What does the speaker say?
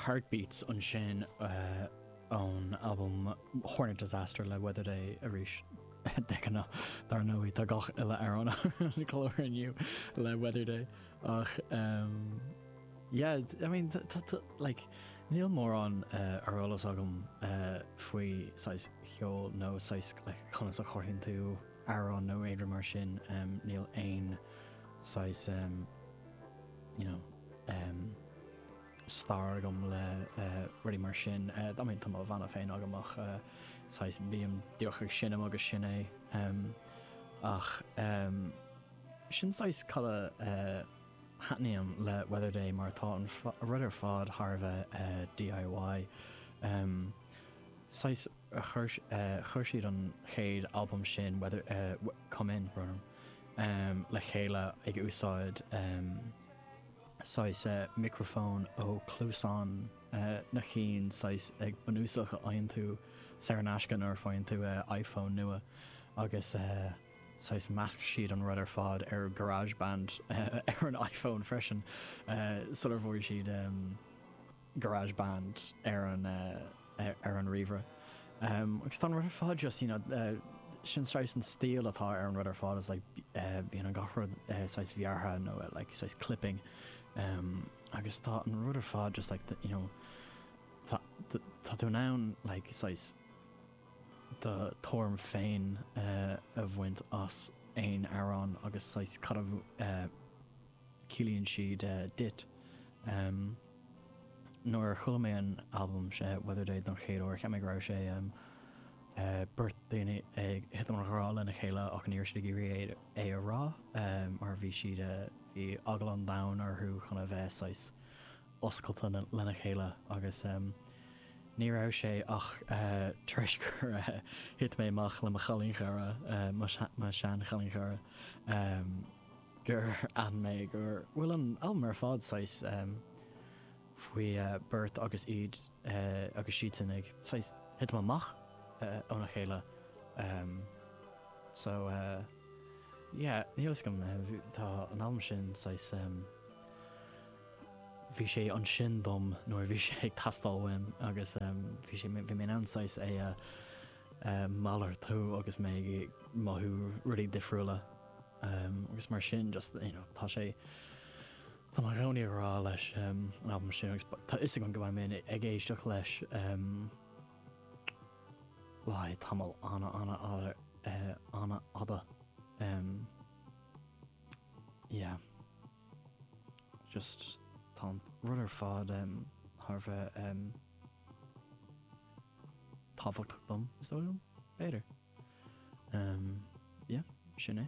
Heartbeats ansin ón albam Hornet Disaster le Weather Day arís. De ghnáth, dar ndóigh, tá gach uile amhrán ar an gclár inniu le Weather Day ach yeah, I mean, like, níl mórán ar eolas agam faoi saghas cheoil nó saghas like conas a chothaíonn tú amhrán nó aon rud mar sin, níl aon saghas. you know, ehm, stair agam le rudaí mar sin. Eh, I mean, tá mo bhanna féin agam ach, eh, saghas, bím díreach ag seinm agus sin é. Ehm, ach, ehm, sin saghas cad a, eh, thaitníonn liom le Weather Day mar tá an rud ar fad thar a bheith, eh, DIY. Ehm, saghas. Chuir siad an chéad albam sin, Weather, Come In, le chéile ag úsáid saghas micreafóin ó chluasáin na cinn saghas bunúsach a fhaigheann tú saor in aisce nuair a fhaigheann tú iPhone nua agus saghas mheasc siad an rud ar fad ar Garageband ar an iPhone freisin sular bhog siad Garage Band ar an ar an ríomhaire agus tá an rud ar fad just you know sin saghas an stíl atá ar an rud ar fad is like bíonn an gach rud saghas bearrtha nó like saghas clipping agus tá an rud ar fad just like you know tá tá tú in ann like saghas do thuairim féin a bhaint as aon amhrán agus saghas cad a ciallaíonn siad duit. Nuair a chuala mé an albam sin, Weather Day, don chéad uair, cheap mé go raibh sé um beirt daoine ag titim i ngrá lena chéile ach ní raibh siad ag iarraidh é a rá mar bhí siad bhí eagla an domhain orthu chun a bheith saghas oscailte lena chéile agus um ní raibh sé ach tar éis gur thit mé amach le mo chailín-chara, mo shean-chailín-chara, um. gur aithin mé go bhfuil an albam ar fad saghas faoi beirt agus iad agus siadsan ag saghas titim amach óna chéile so yeah níl a fhios agam tá an albam sin saghas bhí sé ansin dom nuair a bhí sé ag teastáil uaim agus bhí sé bhí mé in ann saghas é a malartú agus mé ag mothú rudaí difriúla. Agus mar sin just, you know, tá sé, tá mé i gcónaí ag rá leis an albam sin agus ba, tá 'fhios agam go mbeidh mé in, ag éisteacht leis le haghaidh tamaill ana, ana fhada, ana fhada. Yeah. Just tá an, rud ar fad thar a bheith. tábhachtach dom, is dóigh liom. B'fhéidir. Yeah, sin é.